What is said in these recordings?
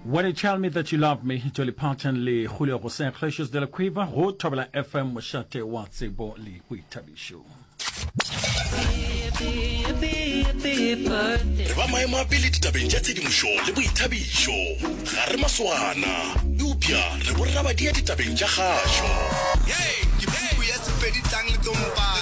When you tell me that you love me, Dolly Parton le Julio José Iglesias de la Cueva go Thobela FM mošate wa tsebo le boithabišo. re ba maemo a pele ditabeng tša tshedimošo le boithabišo ga re maswana eupša re borrabadia ditabeng tša kgašo ye ke puku ya sepedi tlang le tlompang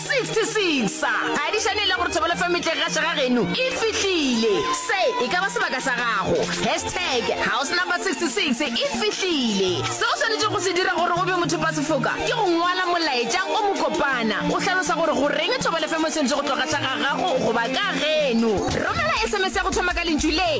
66 sa ga e di šane e le gore thobelo fm e tle gaša ga geno e fihlile se e ka ba sebaka sa gago hashtag house number 66 e fihlile se o swanetše go se dira gore o be mothopa sefoka ke go ngwala molaetša o mo kopana o hlalosa gore go reng thobelo fm e swanetše go tlo gaša ga gago goba ka geno romela sms ya go thoma ka lentšu le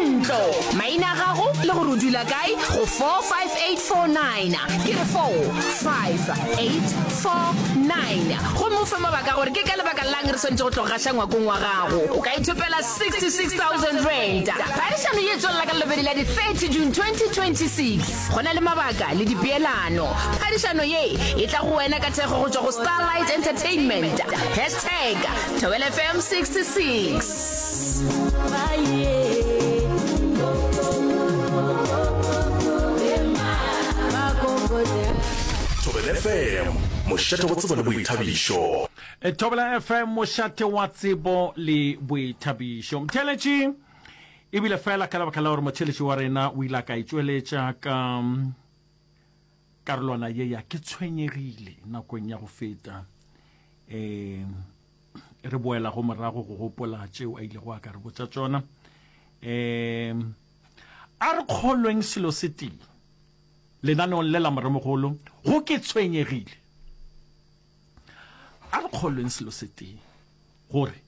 ntlo maina a gago le gore o dula kae go 45849 ke re 458 49 gomme o fe mabaka a gore ke ka lebaka lang re swanetše go tloga gaša ngwakong wa gago o ka ithopela R66,000 phadišano ye tswelela ka lobedi la di-30 june 2026 go na le mabaka le dipeelano phadišano ye e tla go wena ka thekgo go tšwa go starlight entertainment hashtag thobelfm 66 mošate wa tsebo le boithabišo e thobela fm mošate wa tsebo le boithabišo mtheletši ebile fela ka lebaka la gore motheletši wa rena o ile a ka itšweletša ka mm, karolwana ye ya ke tshwenyegile nakong ya go feta um re boela go morago go gopola tšeo a ilego a ka re botša tšona um a re kgolweng selo se tee lenaneong le la moremogolo go ke tshwenyegile a re kgolweng selo se tee gore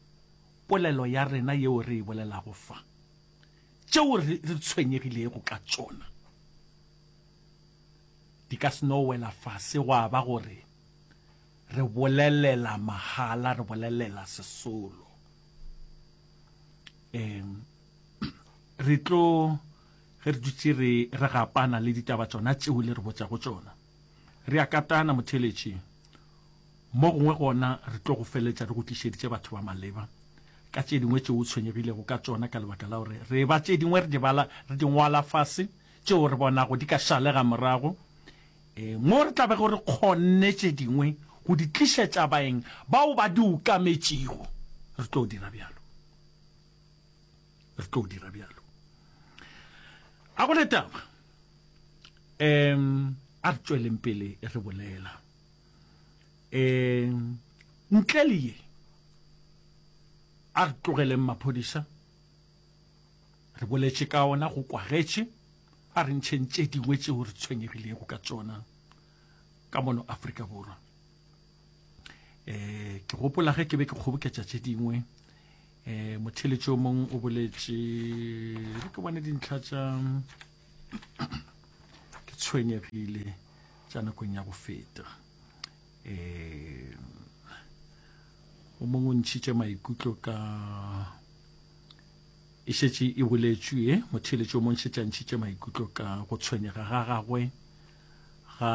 polelo ya rena yeo re e bolelago fa tšeo re tshwenyegilego ka tšona di ka se no wela fase gwa ba gore Re bolelela mahala, re bolelela sesolo. Um re tlo ge re dutše re re gapana le ditaba tsona tšeo le re botšago tsona re a katana motheletši mo gongwe gona re tlo go feletša re go tlišeditše batho ba maleba ka tše dingwe tšeo o tshwenyegilego ka tsona ka lebaka la gore re ba tše dingwe re di bala re di ngwala fase tšeo re bonago di ka šalega morago Ee, mo re tla bego re kgonne tše dingwe go di tlišetša baeng bao ba di okametšego, re tlo dira bjalo. Re tlo dira bjalo. A go le taba? Em, a re tšweleng pele re bolela. Em, ntle le ye, a re tlogeleng maphodisa. Re boletše ka ona go kwagetše, a re ntšheng tše dingwe tšeo re tshwenyegilego ka tšona ka mono Afrika Borwa. Eh, ke gopola ge ke be ke kgoboketša tše dingwe eh motheletši o mongwe o boletše re ke bone dintlha tša ke tshwenyegile tša nakong ya go feta eh o mongwe o ntšhitše maikutlo ka e šetše e boletšwe ye motheletši o mo ntšhetša ntšhitše maikutlo ka go tshwenyega ga gagwe ga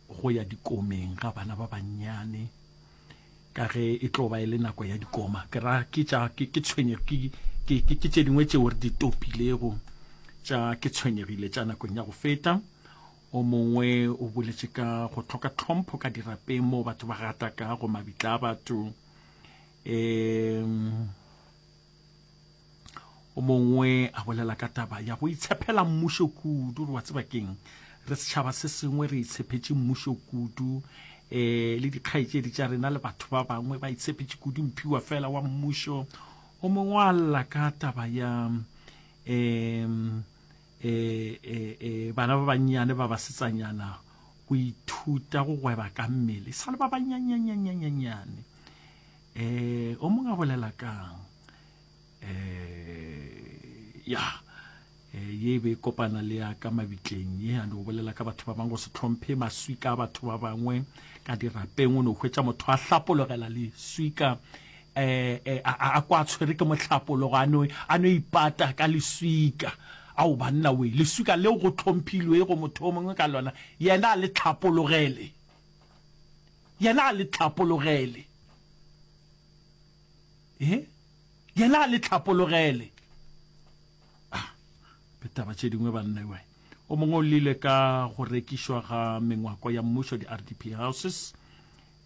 go ya dikomeng ga bana ba bannyane ka ge e tlo ba e le nako ya dikoma ke ra ke tša ke ke tshwenye ke ke ke ke tše dingwe tšeo re di topilego tša ke tshwenyegile tša nakong ya go feta O mongwe o boletše ka go tlhoka tlhompho ka dirapeng moo batho ba gata ka go mabitla a batho. Um, o mongwe a bolela ka taba ya go itshepela mmušo kudu gore wa tseba keng re setšhaba se sengwe re itshephetše mmušo kudu eh le dikgaetšedi tša rena le batho ba bangwe ba itshephetše kudu mphiwa fela wa mmušo o mongwe a lla ka taba ya um e, e, e, bana ba bannyane ba basetsanyana go ithuta go gweba ka mmele sa le ba banyanyanyanyanyannyane um o mongwe a bolela kang um ya eh, ye be kopana le ya ka mabitleng ye a no bolela ka batho ba bangwe go se tlhomphe maswika a batho ba bangwe ka dirapeng o no hwetša motho a hlapologela leswika e, a, a, a kwa a tshwere ke mohlapologo a no, a no ipata ka leswika ao banna we leswika leo go tlhomphilwe go motho o mongwe ka lona yena a le tlhapologele yena a le tlhapologele e yena a le tlhapologele ah, taba tše dingwe banna we o mongwe o lile ka go rekišwa ga mengwako ya mmušo di-rdp houses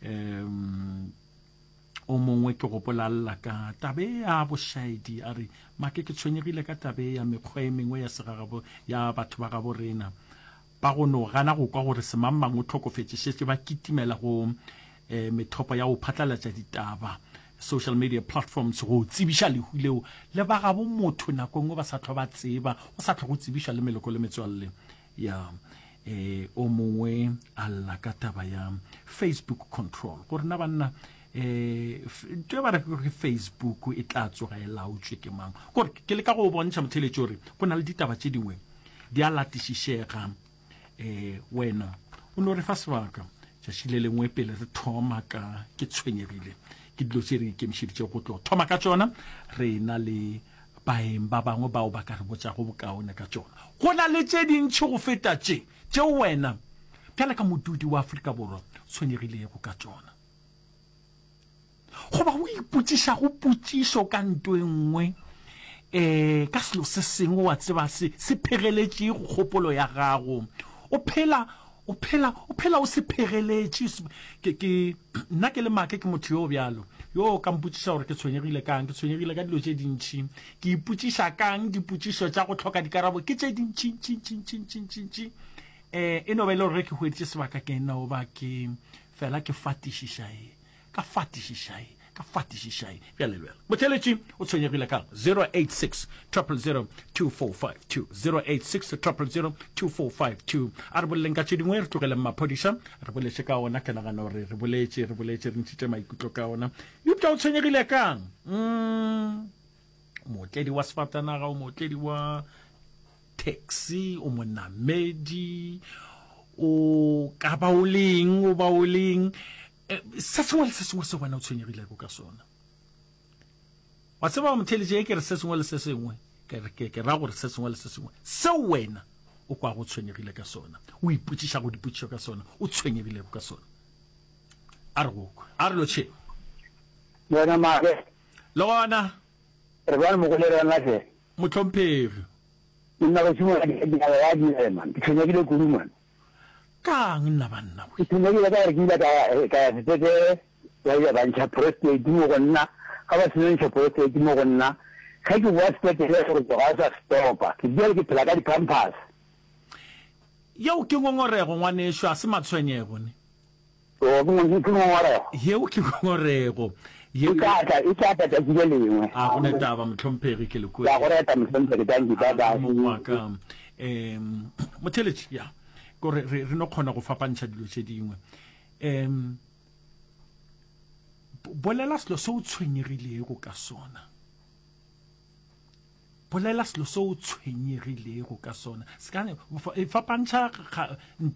um O mongwe ke gopola lla ka tabe ya bošaedi a re, Make, ke tshwenyegile ka tabe ya mekgwa e mengwe ya segagabo ya batho ba gabo rena ba go no gana go kwa gore semangmang o tlhokofetše, šetše ba kitimela go eh, methopo ya go phatlalatša ditaba, social media platforms, go tsebiša lehu leo le ba gabo motho nako nngwe ba sa tlhwa ba tseba, go sa tlhwa go tsebišwa le meloko le metswalle. ya e o mongwe a lla ka taba ya facebook control gore na banna um to ba re gore facebook e tla tsoga e laotswe ke mang gore ke le ka go bontšha motheletše gore go na le ditaba tše dingwe di a latišišega um wena o no re fa sebaka tšatši le lengwe pele re thoma ka ke tshwenyegile ke dilo tse re ikemišeditše go tlo thoma ka tsona re na le Baeng ba bangwe bao ba ka re botšago bokaone ka tšona. Go na le tše dintši go feta tše, tšeo wena bjale ka modudi wa Afrika Borwa tshwenyegilego ka tšona. Goba o ipotšišago potšišo ka nto e nngwe, um ka selo se sengwe wa tseba se se phegeletšego kgopolo ya gago. O phela O phela, o phela o sephegeletše. Ke, ke, nna ke le make, ke motho yo bjalo, yo o ka mpotšiša gore ke tshwenyegile ka'ng. Ke tshwenyegile ka dilo tše dintši. Ke ipotšiša ka'ng, dipotšišo tša go hloka dikarabo ke tše dintši, ntši, ntši, ntši, ntši, ntši, ntši. E, e no ba e le gore ge ke hweditše sebaka ke e no ba ke fela ke fatišiša e, Ka fatišišai, ka fatišišai. Bjale, bjale. Botheeletši o tshwenyegile ka 086 000 2452, 086 000 2452. A re boleleng ka tše dingwe, re tlogeleng maphodiša. Re boletše ka ona, ke nagana gore re boletše, re boletše, re ntšhitše maikutlo ka ona. Eupša o tshwenyegile ka'ng? Umm, o mootledi wa sefatanaga, o mootledi wa taxi, o monamedi, o ka ba o leng, o ba o leng. Eh, se sengwe le se sengwe se wena o tshwenyegilego ka sona wa tseba motheletše e ke re se sengwe le se sengwe ke ra gore se sengwe le se sengwe seo wena o kwa go tshwenyegile ka sona o ipotšiša go dipotšišo ka sona o tshwenyegilego ka sona a re gokwe a re lotšhe yona maake le gona re bane mogole rona se motlhomphegi nna go simoladiaa direma ke tshwenyegile kudu mane Kaang nna banna we? Ke tshwenyegile ka gore ke ile ka ya sepetlele ba ile ba ntšha prostate mo go nna. Ga ba seno ntšha prostate mo go nna, ge ke boa sepetlele gore ke ga o sa stopa. Ke bjale ke phela ka di-pampers. Yeo ke ngongorego ngwanešu, ga se matshwenyego ne. Oo, ke ngong, ke ngongorego. Yeo ke ngongorego. Yeo, E tla tla, e tla tla tšatši le lengwe. A go ne taba, mohlomphegi, ke le kwe. Ke a go reta, mohlomphegi, danki, bye bye. A, mong wa ka. Um, motheletši, ya, ko re, re, re no kgona go fapantšha dilo tše dingwe. Um, bolela selo se o tshwenyegilego ka sona. Bolela selo se o tshwenyegilego ka sona. Se ka, fapantšha, nto.